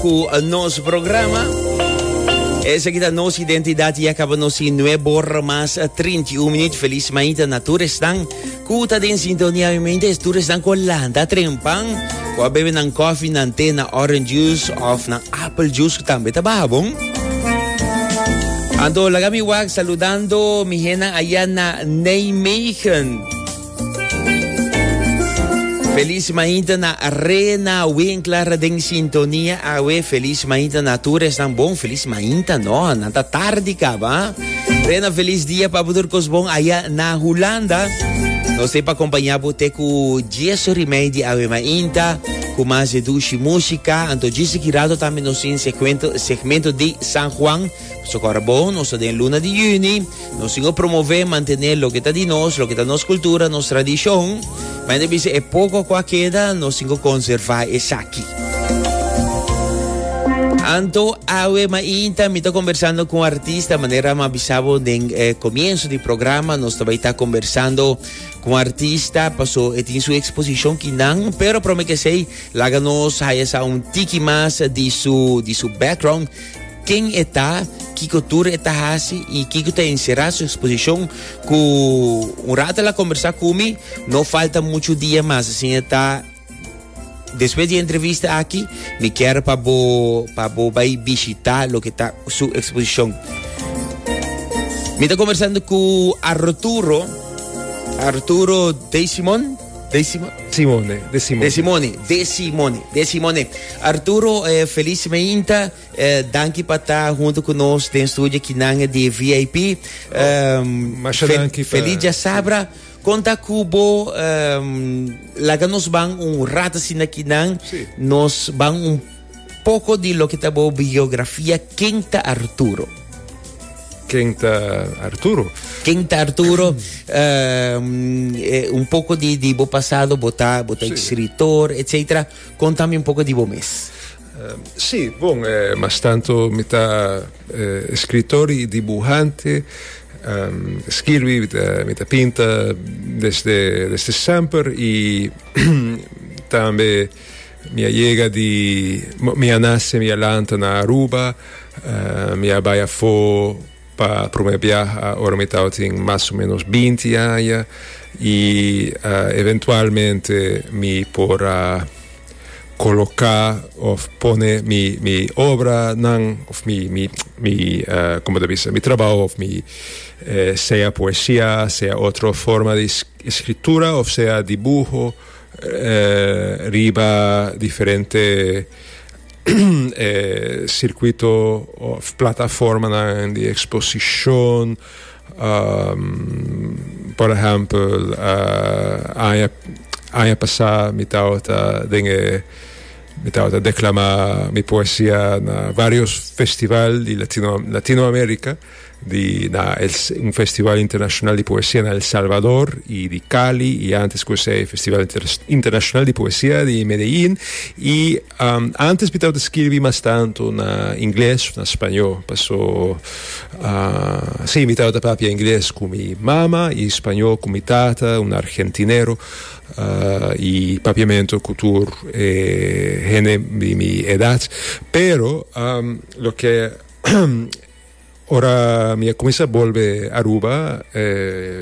ku nos programa. Esaki ta nos identidad y acaba nos sin nuevo hora más 31 minutos. Feliz mañana na todos están. Cuta den sintonía mi mente es todos están con landa trempan. Kwa bebe nan coffee, nan té, nan orange juice of nan apple juice también ta baha bon. Anto lagami wak saludando mi hena allá na Nijmegen. Feliz mainta na Rena Winkler den sintonia awe. Feliz mainta na tur esnan bon. Feliz mainta no, nan ta tardi kaba. Rena, feliz dia pa butur kos bon aya na Hulanda. Nos te pa acompaña bu te ku Jesu rimei di awe mainta, ku mas de dushi musika. Anto djis di kirato tambe nos tin segmento, segmento di San Juan. Su kòrda bon, nos ta den luna di yüni, nos tin ku promové, mantené loke ta di nos, loke ta nos kultura, nos tradishon. Mi ta bisa e poko ku a keda, nos tin ku konservá esaki. Anto awe mainta mi ta conversando con artista manera ma bisabo den eh, comienzo di programa nos ta baita conversando con artista paso e tin su exposición kinan pero prome que sei laga nos haya sa un tiki mas di su di su background Ken e ta, kiko tur e ta hasi i kiko ta enserá su eksposishon? Ku un rato el a kombersá ku mi, no falta muchu dia mas asin e ta, Despues di e entrevista aki, mi kier pa bo pa bo bai bishitá loke ta su eksposishon. Mi ta kombersando ku Arturo, Arturo de Simon, de Simon, Simone, de Simone. de Simone, de Simone, de Simone. Arturo, eh, feliz semeinta. Danki pa ta hunto cu nos den studio ki nan di VIP. Feliz dia sabra. Con ta cu bo laga nos ban un rato asina ki nan. Nos ban un poco di loke ta bo biografia. Ken ta Arturo? Ken ta Arturo? Ken ta Arturo? un poco di bo pasado, bo ta escritor, etcetera. Con tambe un poco di bo mes. Sí, bon, eh, mas tanto mi ta eh, escritor y dibuhante. Um, skirbi, mi ta, mi ta pinta desde, desde semper y tambe mi a llega di, mi a nace, mi a lanta na Aruba, uh, mi a baya fo Pa prome biaha ora mi tabatin mas o menos binti aña y eventualmente mi por a coloca of pone mi mi obra nan of mi mi mi como ta bisa mi trabaho of mi sea poesia sea otro forma di escritura of sea dibuho riba diferente e sirkuito òf plataformanan di eksposishon, por ehèmpel, aña aña pasá mi tabata den e mi tabata deklamá mi poesia na vários festival di Latino Latinoamerika. di na el un festival internacional di poesia na El Salvador y di Cali y antes cu esey festival internacional di poesia di Medellin y um, antes bitaw ta skirbi mas tanto na ingles of na spaño paso uh, si bitaw ta papia ingles cu mi mama y spaño cu mi tata un argentinero uh, y papiamento cu tur eh, hende di mi edad pero um, loke Ora mi a cuminsa bolbe Aruba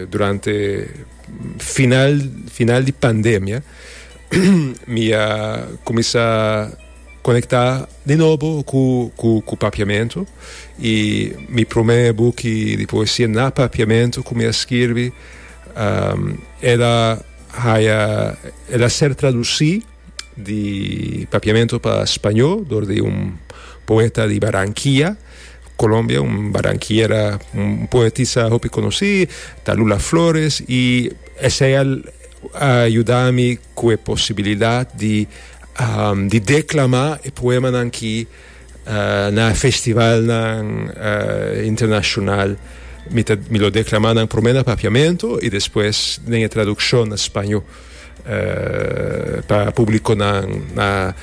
durante final final di pandemia mi a cuminsa conecta di nobo cu cu cu papiamento y mi prome buki di poesia na papiamento cu mi a skirbi el a haya el a ser traduci. di papiamento pa spañó dor di un poeta di Baranquia, Colombia, un baranquiera, un poetisa hopi conocí, ta Lula Flores, y esey a yuda mi cu e posibilidad di um di declama e poemanan aki uh na festivalnan uh internacional. Mi ta mi lo declama nan prome na papiamento y despues den e traduccion na spañó. eh, pa público nan na,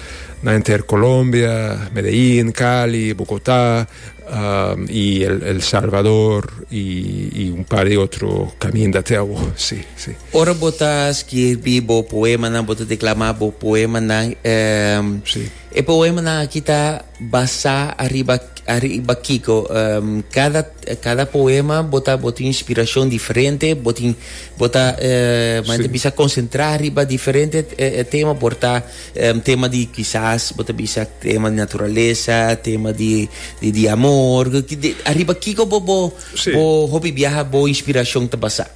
na enter Colombia, Medellín, Cali, Bogotá, um, y el, el Salvador y, y un par de otro caminda te awo, sí, sí. Ora bota escribi bo poema nan, bota declama bo poema nan, eh, sí. E poemanan aki ta basá ariba ariba kiko? Kada kada poema bo ta bo tin inspirashon diferente, bo tin bo ta mane ta bisa konsentrá riba diferente tema por ta tema di kisas bo ta bisa tema di naturalesa, tema di di amor, ariba kiko bo bo bo hopi biaha bo inspirashon ta basá?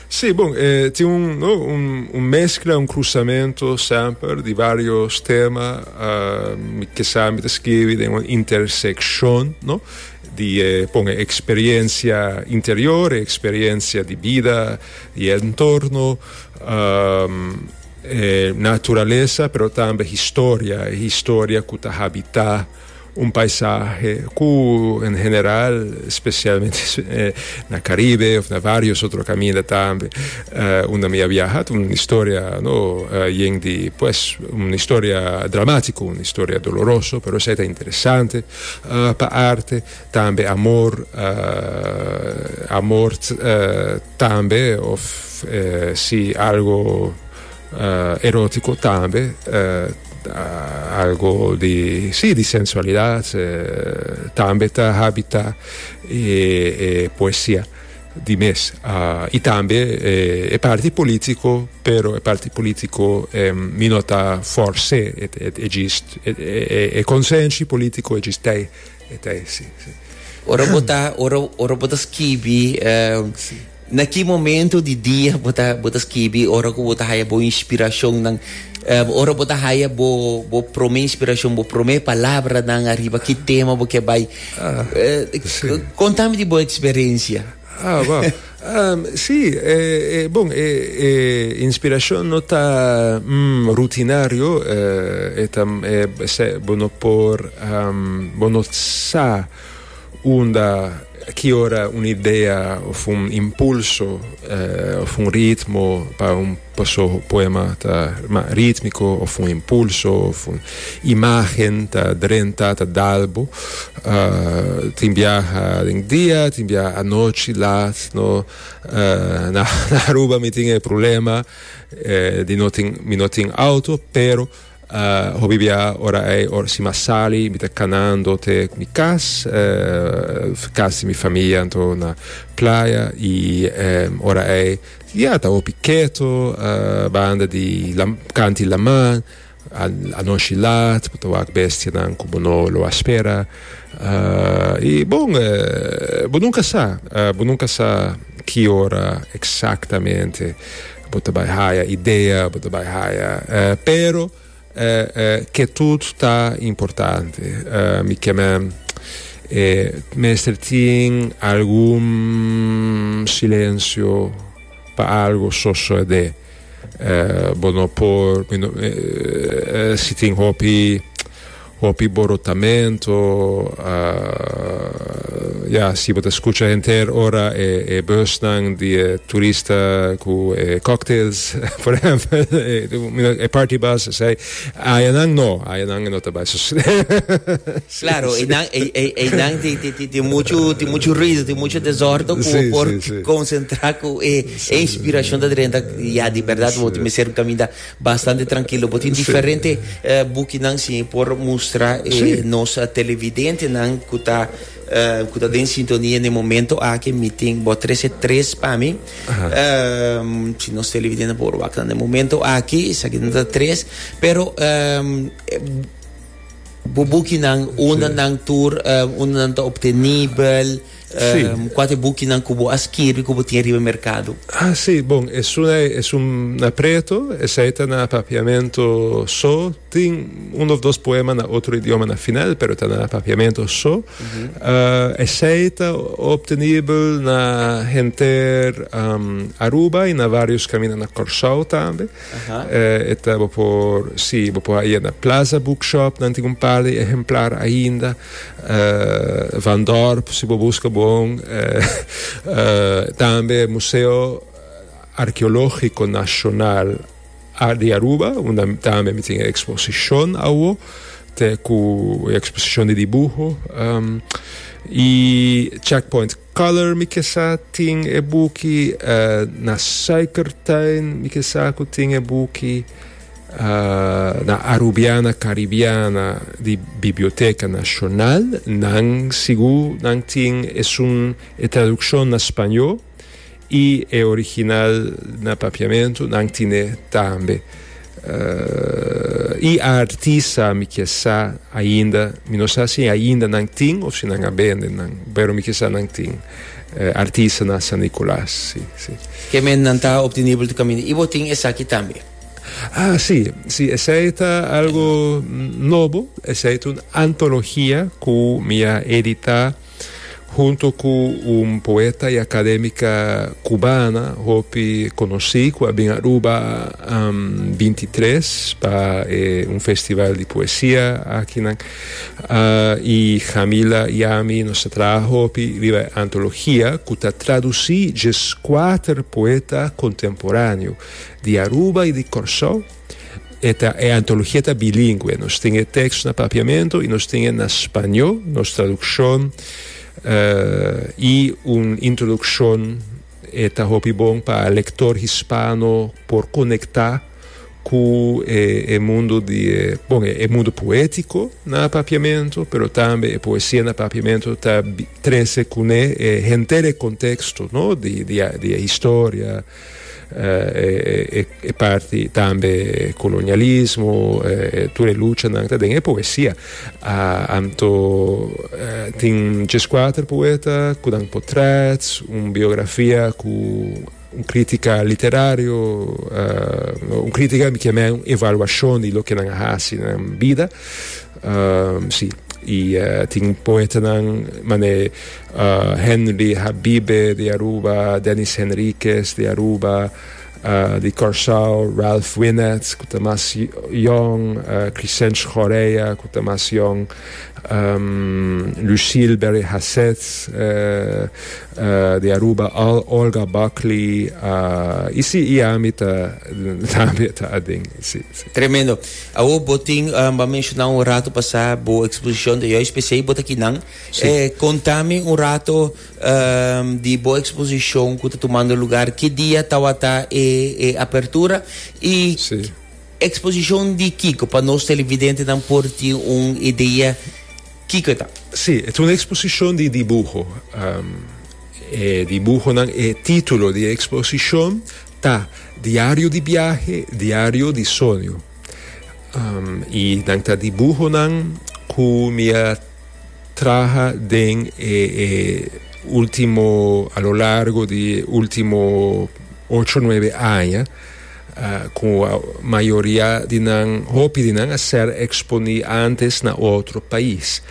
Sí, bon, eh, tin un, no, un, un mezcla, un cruzamento semper di varios temas. Uh, mi, quizá mi te escribe den un intersección, no? di eh, pon experiencia interior, experiencia di vida, di entorno, um, eh, naturaleza, pero tambe historia, historia ku ta habita Un paisahe cu en general, specialmente na Caribe of na varios otro caminda tambe unda mi a viaha ta un historia no yen di pues un historia dramatico, un historia doloroso pero esai ta interesante pa arte tambe amor amor tambe of si algo Uh, erótiko tambe, uh, algo di, sí, di sensualidad, uh, tambe ta habita e, e poesia di mes. Uh, y tambe e, e parti político, pero e parti político em, mi no ta forse, et, et, e gist, e, e, e consensi político e gistei, etei, sí, sí. Ora bo ta, ora, ora bo ta skibi, uh, Na ki momento di dia bo ta bo ta skibi ora ku bo ta haya bo inspirashonnan? Ora bo ta haya bo bo promé inspirashon, bo promé palabranan ariba ki tema bo ke bai? Konta mi di bo eksperensia. Ah, wou. Si, e, e, bon, e, e inspirashon no ta rutinario, e ta, e, bo no por, bo no sa. Unda, ki ora un idea of un impulso of un ritmo pa un poema ta mas ritmiko of un impulso of un imagen ta drenta, ta dal bo. Tin biaha den dia, tin biaha anochi lat. No, na Aruba mi tin e problema di no tin, mi no tin auto pero. Hopi bia ora ei si mi a sali mi ta kanando te mi kas, kas di mi famia anto na playa i ora ei ya ta hopi keto banda di kanti laman anoshi lat bo ta wak bestianan ku bo no lo a spera i bon bo nunka sa bo nunka sa ki ora eksaktamente. Bo ta bai haya idea, bo ta bai haya, pero ketut ta importante. Mi keme mester tin algun silencio pa algo sosode. Bo no por, si tin hopi. Hopi borotamento ya si bo ta skucha henter ora e busnan di e turista ku e cocktails por ehèmpel e party bus esei ayanan no ayanan no ta bai so Klaro e nan e nan tin muchu tin muchu ruido tin muchu desordo ku bo por konsentrá ku e inspirashon ta drenta ya di bèrdat bo ta mester kaminda. Bastante trankilo. Bo tin diferente bukinan si por mustra e nos televidentenan ku ta ku ta den sintonia na e momento aki. Mi tin bo trese tres pa mi. Si nos televidente por wak na e momento aki, esaki nan ta tres. Pero bo bukinan, unde nan tur, unde nan ta obtenibel? Sí. Kua ta e bukinan ku bo a skirbi ku bo tin riba merkado? Ah, sí. Bon, esunai esun na preto. Esei ta na Papiamento so. Tin un òf dos poema na otro idioma na final, pero ta na Papiamento so. Esei ta optenibel na henter Aruba i na varios kaminda na Kòrsou tambe. E ta bo por si bo por haya na Plaza Bookshop nan tin un par de ehemplar ainda Van Dorp si bo busca bon tambe Museo Arkeologico Nacional di Aruba unda tambe mi tin e exposicion awo te cu e exposicion di dibuho y Checkpoint Color mi kesa tin e buki na suikertuin, mi kesa ku tin e buki na Arubiana Karibiana di Biblioteka Nashonal. Nan sigur nan tin esun e tradukshon na spañó. I e original na papiamentu nan tine tambe. I a artista mi ke sa ainda, mi no sa si ainda nan tin of si nan a bende nan, pero mi ke sa nan tin artista na San Nicolas, si, si. Ke men nan ta obtenibel te kaminda. I bo tin esaki tambe? Ah, si, si, esei ta algo nobo, esei ta un antologia ku mi a editá. hunto ku un poeta i akadémika kubana hopi konosí ku a bin Aruba um, binti tres pa e un festival di poesia akinan. Uh, i Jamila i ami nos ta traha hopi riba e antologia ku ta tradusí djes kuater poeta kontemporáneo di Aruba i di Kòrsou. E, ta, e antologia ta bilingüe. Nos tin e tekst na Papiamento i nos tin e na spañó, nos tradukshon uh, i un introdukshon e ta hopi bon pa lektor hispano por konektá ku e, e mundu di e, bon, e, e mundu poétiko na Papiamento, pero tambe e poesia na Papiamento ta trese kuné e henter e konteksto, no, di, di, di e historia, e parti tambe kolonialismo, tur e luchanan ta den e poesia. Anto tin djes kuater poeta ku nan potrèt, un biografia ku un kritika literario, no un kritika mi ke meh un evaluashon di loke nan a hasi nan bida. Sí, i tin poetanan manera e Henry Habibe di Aruba, Dennis Henriquez di Aruba, di Curaçao, Ralph Winnets ku ta mas yòn, Crisench Correa ku ta mas yòn, Lucille Berry-Hassett di Aruba, Olga Buckley, i si, i ami ta tambe ta aden. Tremendo. Awor bo tin, bo a menshoná un rato pasá bo eksposishon ta yòis p'esei bo ta kinan. E kontá mi un rato di bo eksposishon ku ta tumando lugar. Ki dia tabata e apertura? I eksposishon di kiko? Pa nos televidentenan por tin un idea kiko e ta. Sí, e ta un eksposishon di dibuho. E dibuhonan, e título di e eksposishon Ta, diario di biahe, diario di soño. I nan ta dibuhonan ku mi a traha den e ultimo, a lo largo di e ultimo ocho, nuebe aña, ku mayoria di nan, hopi di nan a ser eksponí antes na otro pais.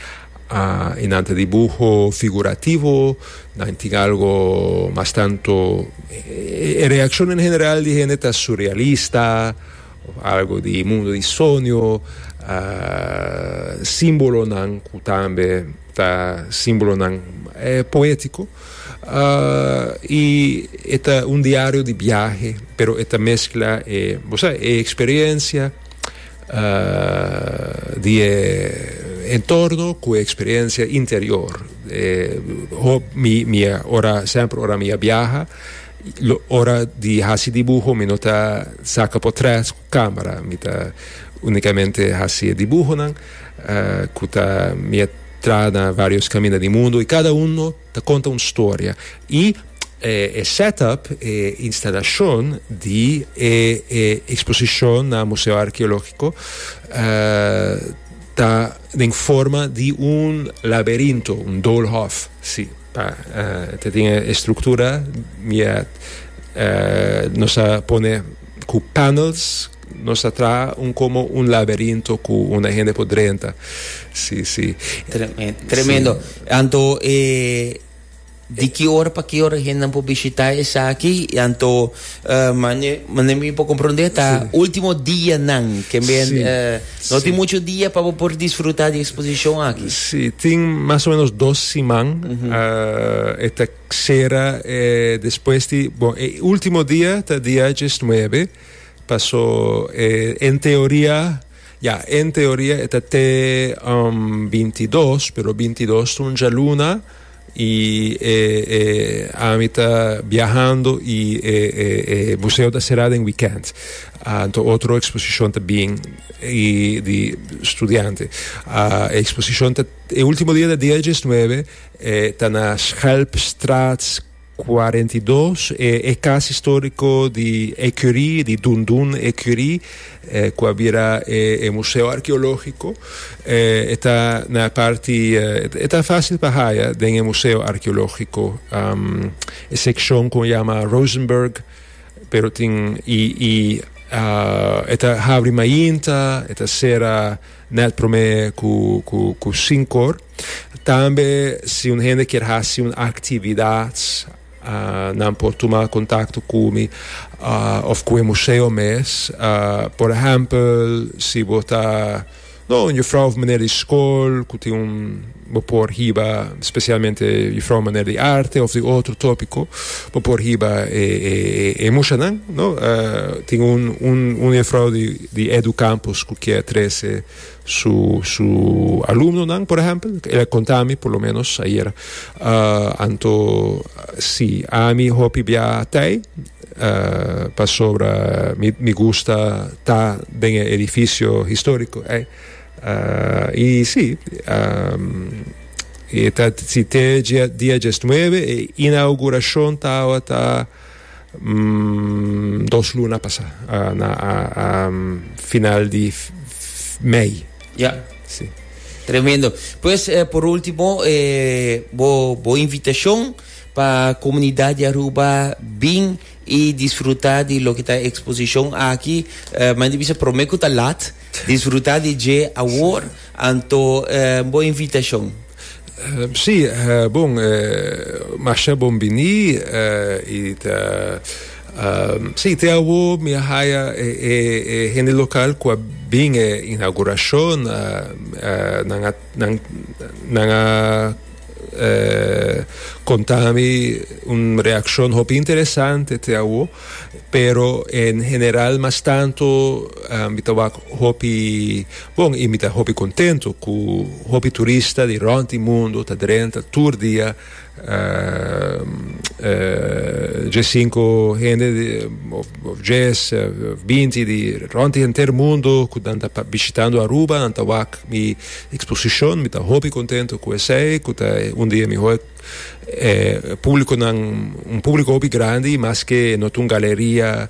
Uh, y nan ta dibuho figurativo, nan tin algo mas tanto, e, e reaccion en general di hende ta surrealista, of algo di mundo di sonio, uh, simbolonan cu tambe ta simbolonan e poetico, uh, y e ta un diario di biahe, pero e ta mezcla e, bo sa, e experiencia, di e entorno cu e experiencia interior. mi, ora, sempre ora mi a biaha, ora di haci dibuho mi no ta saca portret cu camera, mi ta unicamente haci e dibuhonan cu ta, mi a traha na varios caminda di mundo y cada uno Ta conta un storia y e setup, e instalacion di e exposicion na Museo Archeologico ta den forma di un laberinto, un doolhof, si, pa ta tin e estructura mia nos a pone cu panels, Nos ta traha un como un laberinto cu un a hende por drenta. Si, si. Tremendo, tremendo. Si. Anto e di ki ora pa ki ora e hendenan por bishita esaki? Y anto mane, mane mi por comprende ta Si. ultimo dianan, kembe Si. eh, no tin Si. mucho dia pa bo por disfruta di exposicion aki. Si, tin mas o menos dos siman. ah, e ta cera eh, despues di, bon, e ultimo dia ta dia diesnuebe. Paso e en teoria, ya, en teoria e ta te um binti i dos, pero binti i dos ta un djaluna i e e ami ta biahando i e e e museo ta será den weekend. Ah anto otro exposicion ta bin i di studiante. Ah e exposicion ta, e ultimo dia ta dia dies nuebe, e ta na Schelpstraat. Cuarenta i dos e cas historico di Ecurie, di Dun Dun Ecurie, cu a bira e museo archeologico. E ta na e parti, e ta facil pa haya den e museo archeologico, e seccion cu a yama Rosenberg, pero tin y y e ta habri mainta, e ta cera na e prome cu cu cu cinco or. Tambe si un hende kier hasi un aktividat nan por tuma kontakto ku mi òf ku e museo mes. Por ehèmpel si bo ta un jufrou òf manera di skol ku tin un bo por hiba spesialmente jufrou manera di arte òf di otro topiko bo por hiba e mushanan. Tin un jufrou di Educampus ku kier trese. su su alumnonan por ehempel el a konta mi por lo menos ayer uh, anto si ami hopi bia tei uh, pasobra mi mi gusta ta den e edificio historico ei uh, i si um, e ta si te dia dia 19 e inauguracion tawa ta dos luna pasa, uh, na uh, um, final di mei. Ja. Sí. Tremendo. Pues, eh, por último, eh, bo, bo invitación pa comunidad de Aruba, bin y disfruta di lo que ta exposición aquí. Uh, men di bisa prome ku ta lat. Disfruta di dje awor, anto eh bo invitacion. Si, bon, masha bon bini, i ta, si, te awor mi a haya e hende local cu a bin e inauguracion, nan a, nan a conta mi un reaccion hopi interesante te awor. Pero en general mas tanto mi ta wak hopi bon y mi ta hopi contento cu hopi turista di rond e mundo ta drenta tur dia dje cinco hende of dje of binti di rond e henter mundo cu nan ta bishitando Aruba nan ta wak mi exposicion mi ta hopi contento cu esey cu ta un di e mihor E publiconan, un publico hopi grandi, maske no ta un galeria,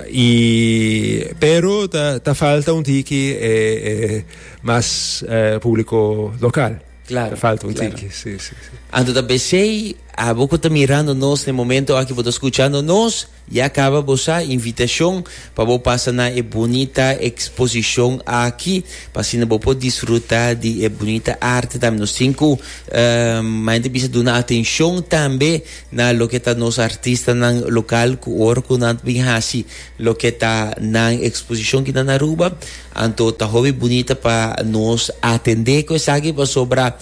y pero ta falta un tiki e mas publico local, ta falta un tiki, si, si, si. Anto ta p'esei, abo cu ta mirando nos na e momento aki, bo ta scuchando nos. Ya caba bo sa invitacion pa bo pasa na e bunita exposicion aki p'asina bo por disfruta di e bunita arte tambe. Nos tin cu manjente bisa duna atencion tambe na loke ta nos artistanan local cu ora cu nan bin haci loke ta nan exposicion aki na Aruba anto ta hopi bunita pa nos atende cu esaki pasobra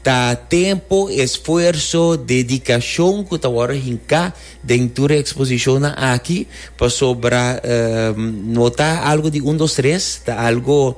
ta tempo, esfuerso, dedicacion cu ta wordo hinca Den tur e exposicionnan aki, pasobra no ta algo di un dos tres, ta algo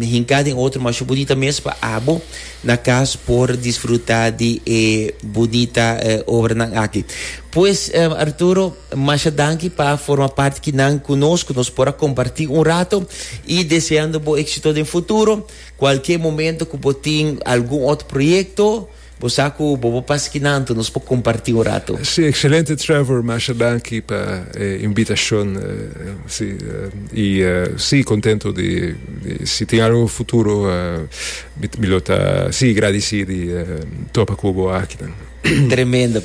hinca den otro masho bunita mes pa abo na cas por disfruta di e bunita obranan aki. Pues, Arturo, masha danki pa forma parti kinan cu nos, cu nos por a comparti un rato y deseando bo exito den futuro. Cualkier momento cu bo tin algun otro proyecto, Bo sa cu bobo paskinanto nos por comparti un rato. Sí, excelente Trevor, masha danki pa e invitacion. Sí, y sí contento di si tin algo futuro mi lo ta sí gradici di topa cu bo akinan. Tremendo.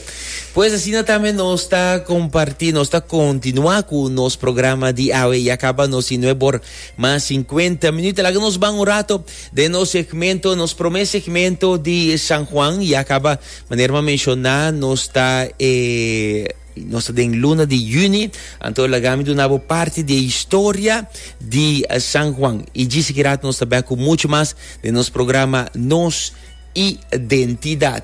Pues asina tambe nos ta comparti, nos ta continua cu nos programa di awe. Ya caba nos y no e bor mas cincuenta minuut. Laga nos ban un rato Den nos segmento, nos prome segmento di San Juan, ya caba, manera ma menciona, nos ta e nos ta den luna di juni, anto lagami dunabo parti di historia di San Juan. Y gisi ki rat nos ta bek cu mucho mas den nos programa Nos Identidad.